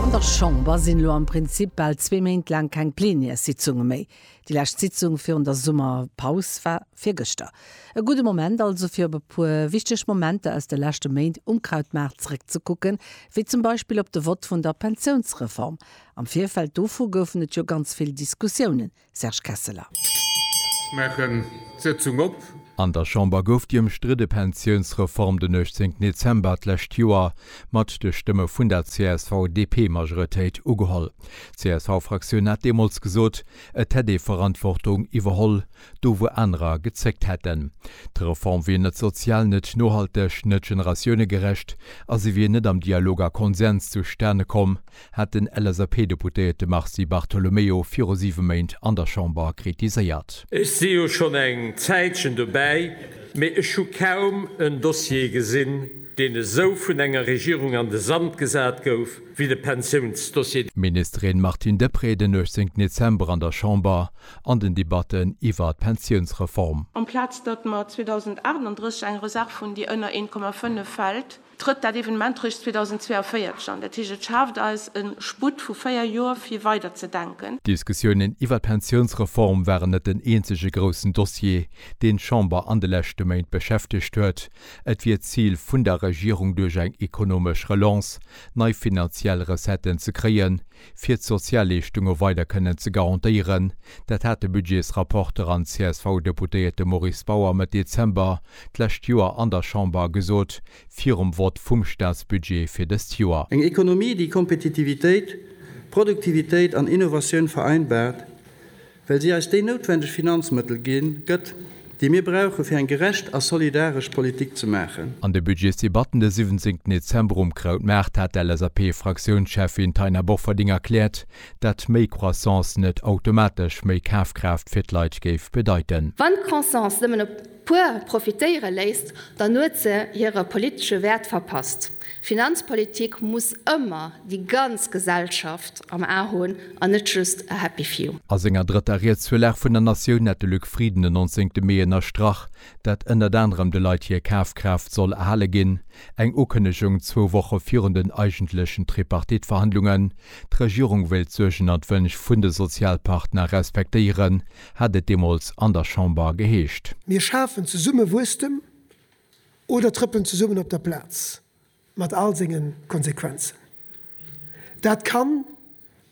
An der Chamber sinn elo am Prinzip bal zwee Méint laang keng Plenärssitzunge méi. Déi lescht Sitzung virun der Summerpaus war virgëschter. E gudde Moment also fir op e puer wichteg Momenter aus de leschte Méint um Krautmaart zeréckzekucken, wéi zum Beispill op de Vott vun der Pensiounsreform. Am Virfeld dovu goufen et jo ganz vill Diskussiounen. Serge Kesseler. Ech maachen d'Sëtzung op. An der Chamber gouf déi ëmstridde Pensiounsreform den 18 Dezember d'lescht Joer mat de Stëmme vun der CSV-DP-Majoritéit ugeholl. D'CSV-Fraktioun hat deemools gesot, et hätt ee Verantwortung iwwerholl, do wou anerer gezéckt hätten. D'Reform wier net sozial, net nohalteg, net generatiounegerecht a se wier net am Dialog a Konsens zustane komm, hat den LSAP-Deputéierte Mars Di Bartolomeo viru siwe Méint an der Chamber kritiséiert. Ech si jo schonn eng Zäitchen dobäi, mee ech hu kaum en Dossier gesinn, deen esou vun enger Regierung an de Sand gesat gouf wéi de Pensiounsdossier. D'Ministerin Martine Deprez den 18 Dezember an der Chamber an den Debatten iwwer d'Pensiounsreform. Amplaz datt mer 2038 eng Reserv hunn, déi ënner 1,5 fält, trëtt dat Evenement eréischt 2042 an. Dat heescht, et schaaft eis e Sputt vu véier Joer, fir weider ze denken. D'Diskussiounen iwwer d'Pensiounsreform waren net den eenzege groussen Dossier, deen d'Chamber an de leschte Méint beschäftegt huet. Et wier d'Zil vun der Regierung, duerch eng ekonomesch Relance nei finanziell Recetten ze kréien, fir d'Sozialleeschtunge weider kënnen ze garantéieren. Dat hat de Budgetsrapporter an CSV-Deputéierte Maurice Bauer Mëtt Dezember d'lescht Joer an der Chamber gesot, virum Vott vum Staatsbudget fir dëst Joer. Eng Ekonomie, déi Kompetitivitéit, Produktivitéit an Innovatioun vereinbart, well si eis déi noutwendeg Finanzmëttel gi gëtt, déi mir brauche fir eng gerecht a solidaresch Politik ze maachen. An de Budgetsdebatten de 17 Dezember um Krautmaart hat d'LSAP-Fraktiounscheffin Taina Bofferding erkläert, dat méi Croissance net automatesch méi Kafkraaft fir d'Leit géif bedeiten. Wann d'Croissance nëmmen e puer profitéiere léisst, dann huet se hire politesche Wäert verpasst. Finanzpolitik muss ëmmer déi ganz Gesellschaft am A hunn an net just a happy few. A senger drëtter Ried zur Lag vun der Natioun hat de Luc Frieden den 19 Mee ënnerstrach, dat ënnert anerem de Leit hir Kafkraaft soll erhale ginn, eng Ukënnegung zwou Woche virun den eigentlechen Tripartite-Verhandlungen. D'Regierung wéilt d'Suergen an d'Wënsch vun de Sozialpartner respektéieren, hat et deemools an der Chamber geheescht. Mir schafen zesumme Wuesstem Oder trëppelen zesummen op der Plaz, mat all senge Konsequenzen. Dat kann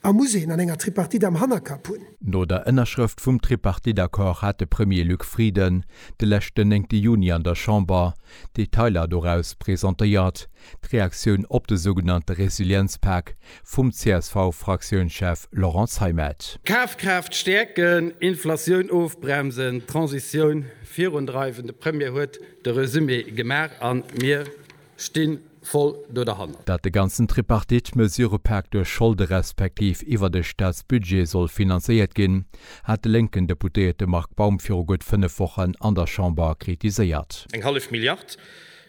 a muss een an enger Tripartite am Hannerkapp hunn. No der Ënnerschrëft vum Tripartite-Accord hat de Premier Luc Frieden de leschten néngte Juni an der Chamber d'Detailer doraus presentéiert. D'Reaktioun op de sougenannte Resilienzpak vum CSV-Fraktiounschef Laurent Zeimet. D'Kafkraaft stäerken, Inflatioun ofbremsen, d'Transitioun virundreiwen, de Premier huet de Resumé gemaach a mir sti voll do derhanner. Datt de ganzen Tripartite-Mesurëpak duerch Scholde respektiv iwwer de Staatsbudget soll finanzéiert ginn, hat de lénken Deputéierte Marc Baum viru gutt fënnef Wochen an der Chamber kritiséiert. Eng hallef Milliard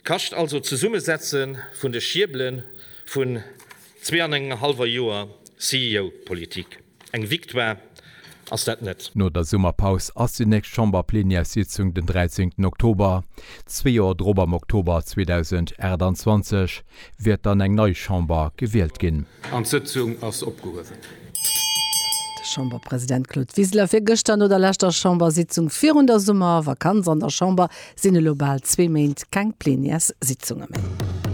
kascht also d'Zesummesetze vun de Schiebele vun Zwee an engem hallwer Joer CEO-Politik, eng Victoire ass dat net. No der Summerpaus ass déi nächst Chamberplenièrssitzung den 13 Oktober. Zwee Joer drop, am Oktober 2028, wäert dann eng nei Chamber gewielt ginn. An d'Sëtzung ass opgehuewen. De Chamberpresident Claude Wiseler fir gëschter. No der leschter Chambersitzung virun der Summervakanz an der Chamber sinn elo bal zwee Méint keng Plenièrssitzunge méi.